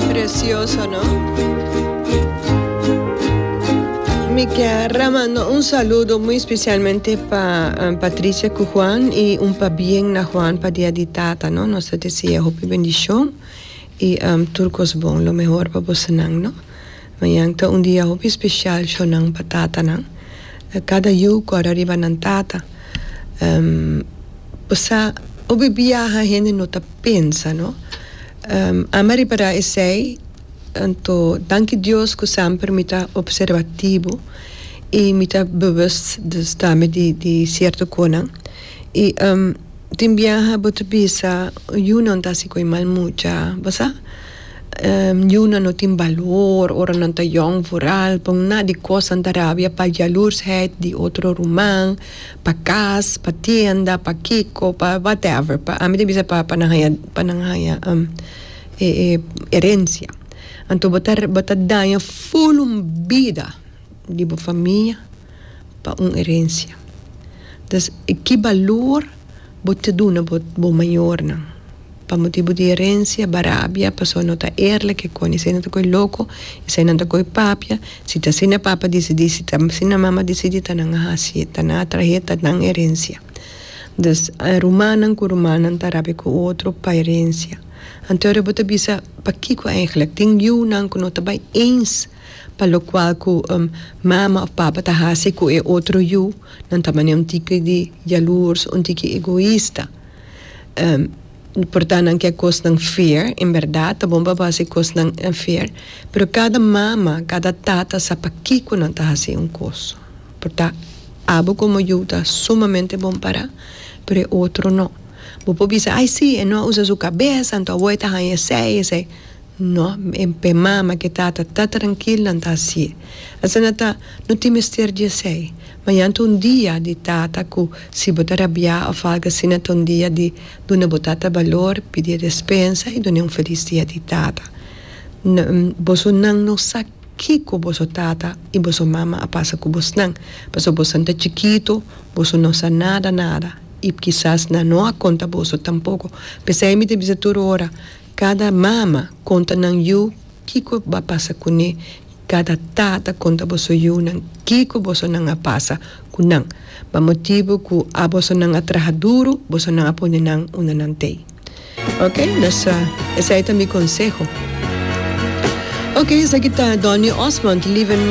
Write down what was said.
Precioso no. Mi kier a manda un saludo muy specialmente pa Patricia cu Juan y un pabien na Juan pa dia di tata no nos ta desea hopi bendicion y tur cos bon lo mehor pa bosonan no mañan ta un dia hopi special shonan pa tatanan cada yu cora riba nan tata pasa hopi biaha hende no ta pensa no. Ami a repará esei, anto danki Dios ku semper mi ta opservatibu i mi ta bewust di stami di sierto konan. I tin biaha bo ta bisa yunan ta hasi ku e mal mucha, bo sa? Yunan no tin balor ora nan ta yòn, vooral por na di kos nan ta rabia pa jalurshèd di otro ruman. Pa cas, pa tienda, pa kico, pa whatever, pa ami ta bisa pa nan haya, pa nan haya e e herencia. Anto bo ta bo ta daña full un bida di bo famia pa un herencia. Dus ki balor bo ta duna bo bo mayornan? pa motibu di erensia, barabia, pasobra no ta eerlik e koni. Esei nan ta koe loko, esei nan ta koe papia. Si ta asina e papa disidí, si ta asina e mama disidí, ta nan a hasi, ta nan a trahe, ta nan erensia. Dus, rumannan ku rumannan ta rabia ku otro pa erensia. Anto ora bo ta bisa pakiko eigelijk tin yunan ku no ta bai eens pa lokual ku mama òf papa ta hasi ku e otro yu, nan ta manera un tiki di yaluurs, un tiki egoista. por ta nan ke kosnan fear en berdad ta bon pa base e kosnan fear pero kada mama kada tata sa pakiko nan ta hasi un kos por ta abo komo yu ta sumamente bon para pero e otro no bo por bisa ai si e no a usa su kabes anto abo e ta haña esei esei No, p'e mama k'e tata ta trankil nan ta así. Asina ta, no tin mester di esei. Mañan ta un dia di tata ku si bo ta rabiá òf algu asina ta un dia di duna bo tata balor, pidi despensa i dun'é un felis dia di tata. Boso nan no sa kiko boso tata i boso mama a pasa ku bosnan, pasobra bosnan ta chikitu, boso no sa nada nada i kisas nan no a konta boso tampoko. P'esei mi ta bisa tur ora. Kada mama konta nan yu kiko ba pasa kuné i kada tata konta boso yunan kiko boso nan a pasa ku nan. Ba motibu ku a boso nan a traha duru boso nan a pone nan unda nan t'ei. Ok nos a esei ta mi konseho. Ok esaki ta Donny Osmond, live in.